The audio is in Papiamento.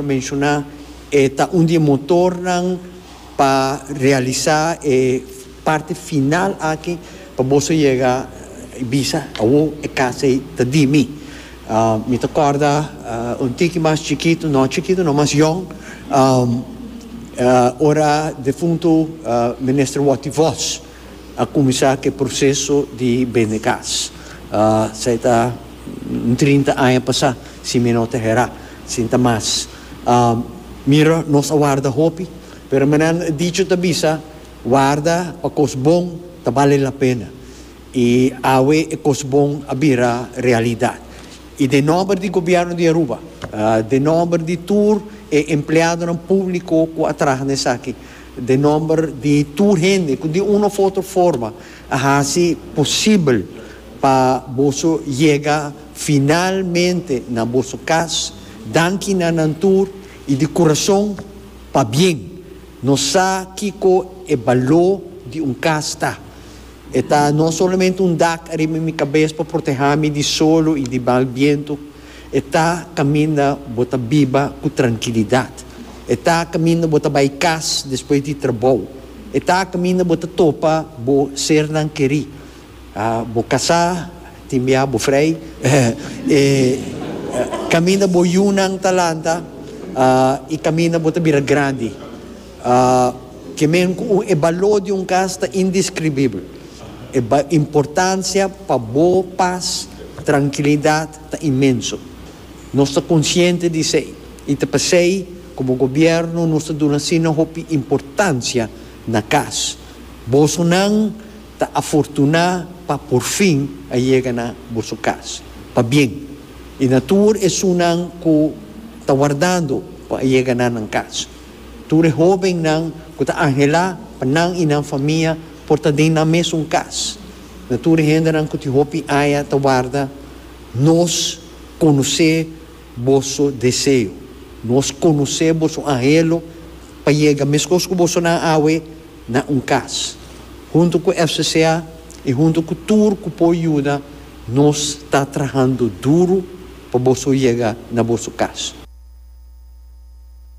Menshoná e ta un di e motornan pa realisá e parti final aki pa boso yega y bisa, Awo e kas ei ta di mi. Mi ta kòrda un tiki mas chikitu, no chikitu no, mas yòn, ora defuntu Minister Watty Vos. a kuminsá ku e proseso di bende kas. Esei ta un trinta aña pasá, si mi no ta herá, sin ta mas. Mira, nos a warda hopi, pero manan e dicho ta bisa, Warda pa kos bon ta bale lapena. I awe e kos bon a bira realidat. I den nòmber di Gobièrnu di Aruba, den nòmber di tur e empleadonan públiko ku a traha na esaki, den nomber di tur hende cu di un of otro forma a haci posibel pa boso yega finalmente na boso cas, danki na nan tur y di curazon pabien. Nos sa kico e balo di un cas ta. E ta no solamente un dak ariba mi cabes pa proteha mi di solo y di mal biento, E ta caminda bo ta biba cu trankilidad. E ta caminda bo ta bay cas despues di trabou. E ta caminda bo ta topa bo sernan keri. Bo casá, tin bia bo frey. E caminda bo yunan ta lanta y caminda bo ta bira grandi. A Kimen ku un e baló di un kas ta indiskribibel. E importansia pa bo pas, trankilidat, ta inmenso. Nos ta konsiente di esei i ta p'esei komo gobièrnu nos ta duna asina hopi importansia na kas. Boso nan ta afortuná pa por fin a yega na boso kas pa bien i na tur esunnan ku ta wardando pa a yega na nan kas. Tur e hóbennan ku ta anhelá pa nan i nan famia por ta den nan mesun kas. Na tur e hendenan ku tin hopi aña ta warda, nos konosé boso deseo. Nos konosé boso anhelo pa yega meskos ku boso nan awe na un kas. Huntu ku FCCA i huntu ku tur ku por yuda, nos ta trahando duru pa boso yega na boso kas.